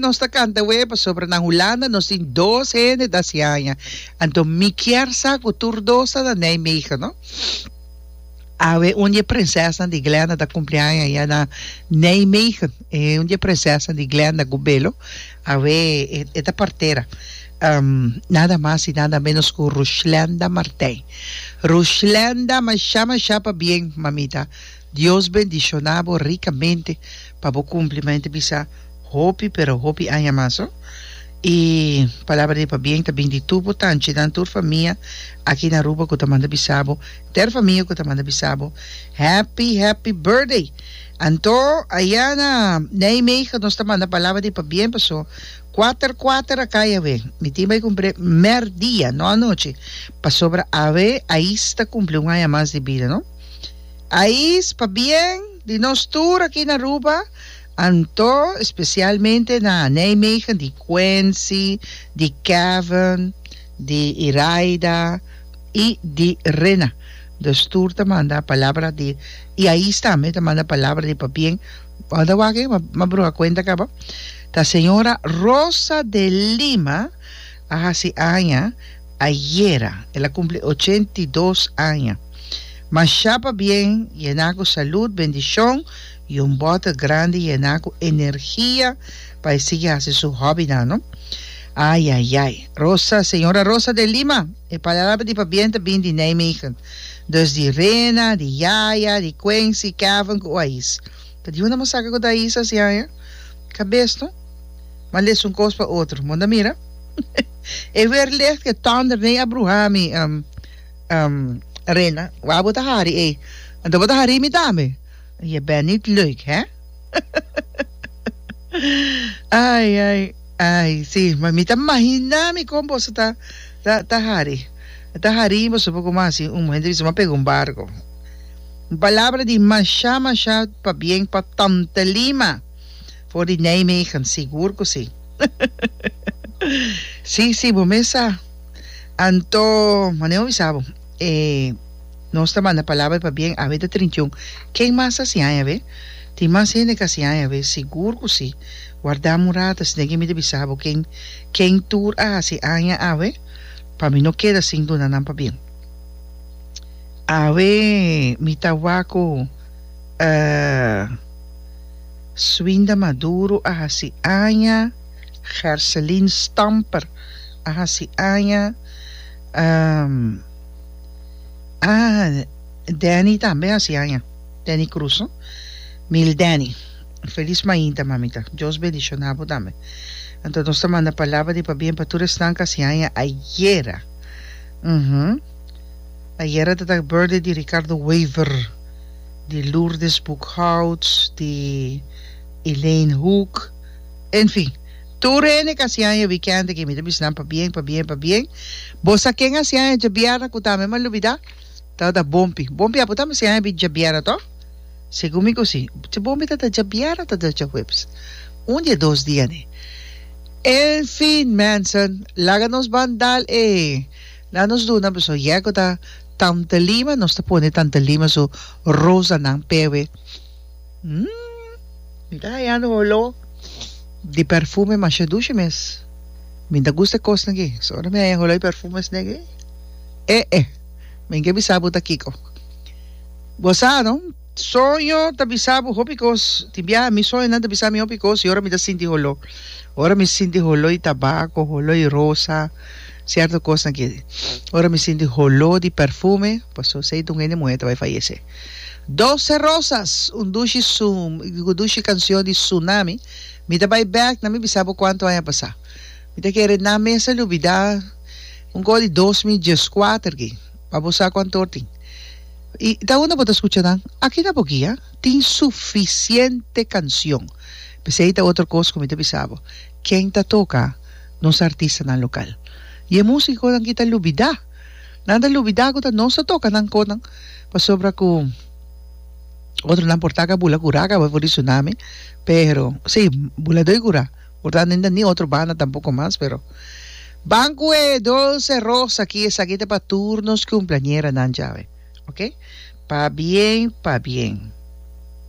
nos ta canta we pasobra na Hulanda nos tin dos hende da si aña. Anto mi kier sa cu tur dos ta na Nijmegen, no? Awe un die prinsesa di Glenda ta cumpleaños ya na Nijmegen. E un die prinsesa di Glenda cu belo. Awe e ta partera nada mas y nada menos cu Rushlenda Martijn. Rushlenda masha masha pa bien mamita Dios bendiciona bo ricamente pa bo cumpli ma enta bisa hopi pero hopi aña mas ho y palabra di pa bien ta bini di tur bo tanchinan tur famia aki na Aruba cu ta manda bisa bo ter famia cu ta manda bisa bo happy happy birthday. Anto, ayá na Nijmegen nos ta manda palabra di pabien, paso kuater kuater a kai awe. Mi tin bai kumpré mèr dia, no anochi, pasobra awe ais ta kumpli un aña mas di bida, no? Ais, pabien di nos tur aki na Aruba, anto espesialmente na Nijmegen di Quency, di Kevin, di Iraida i di Rena. Nos tur ta manda palabra di y aís tambe ta manda palabra di pabien bo a ta wak e ma bruha cuenta caba ta señora Rosa de Lima a haci aña ayera ela cumpli ochenta y dos aña masha pabien yena cu salud bendicion y un bottle grandi yena cu energia pa e sigui haci su hobby nan no ayayay Rosa señora Rosa de Lima. E palabra di pabien ta bin di Nijmegen, dus di Rena, di Yaya, di Quincy, Kevin ku Oais. Pa di un ta mos saka ku ta Oais a siaña? Ka bes no. M'a lesa un kos pa otro. Munda mira. E weer licht ke tonder nei a bruha mi, um, um, Rena. Wak bo ta hari ei. Anto bo ta hari mi tambe? Je bent nit leuk, hè? Ai, ai. Ay, sí, ma mi ta mahiná mi kon boso ta, ta, ta hari. Ta harí boso por kuma así un muhé debí pega un barco. Un palabra di mashá, mashá pa bien pa Tante Lima for di Nijmegen, sigur ku sí. Sí, sí, bo mes sa. Anto, mane bo bisa bo, e nos ta manda palabra pa bien awe ta trintiun. Ken mas ta siña awe? Tin mas hende ka siña awe, sigur ku sí. Warda murada, si ne'ke mi ta bisa bo ken ken tur a hasi aña awe, pa mi no keda sin duna nan pabien. Awe mi ta wak ku Swinda Maduro a hasi aña, Gerselin Stamper a hasi aña, Danny tambe a hasi aña, Danny Cruz no, Mil Danny. Felis mainta, mamita. Dios bendiciona bo tambe. Anto nos ta manda palabra di pabien pa tur esnan cu a sin haña ayera. Uhum. Ayera ta ta birthday di Ricardo Wever, di Lourdes Boekhouts, di Elaine Hoek. Enfin, tur hende cu a sin haña weekend aki. Mi ta bisa nan pabien, pabien, pabien. Bo sa ken a sin haña djabierna cu tambe mi a lubida? Tabata Bompi. Bompi, abo tambe sin haña djabierna toh? Segun mi gosi, bon mi ta ta dja bier o ta ta dja huebes? Un di e dos dia ne. Enfin, mensen, laga nos bandal e na nos duna beso yego ta Tante Lima, nos ta pone Tante Lima su rosanan pewe. Hum, mi ta hayando un oló di perfume masha dushi mes. Mi ta gusta e kos naki, so ora mi haya un oló di perfumes naki, eh eh, mi ke bisa bo ta kiko. Bo sa no? Soño ta bisa bo hopi cos. Tin bia mi soñonan ta bisa mi hopi cos y ora mi ta sinti holo. Ora mi sinti holo y tabaco, holo y rosa, cierto cosnan ki. Ora mi sinti holo di perfume, paso esey ta un hende muher ta bay fayece. Doce rosas, un dushi sum, un dushi cancion di Tsunami. Mi ta bay bek na mi bisa bo cuanto aña pasa. Mi ta kere nan mester lubida un cosa di dos mil diescuater ki. Pa bo sa cuantoor tin. Y ta unda bo ta scucha nan? Aki na bo guia tin suficiente cancion. Pesey ta otro cos cu mi ta bisa bo. Ken ta toca nos artistanan local? Y e musiconan aki ta lubida. Nan ta lubida cu ta nos ta toca nan conan. Pasobra cu otronan por taca bula cura caba for di tsunami. Pero, si, bula doy cura. Portanto ni otro banda tampoco mas pero banco e dulce rosa aki esaki ta pa tur nos cumpleañera nan djawe ok pa bien pa bien.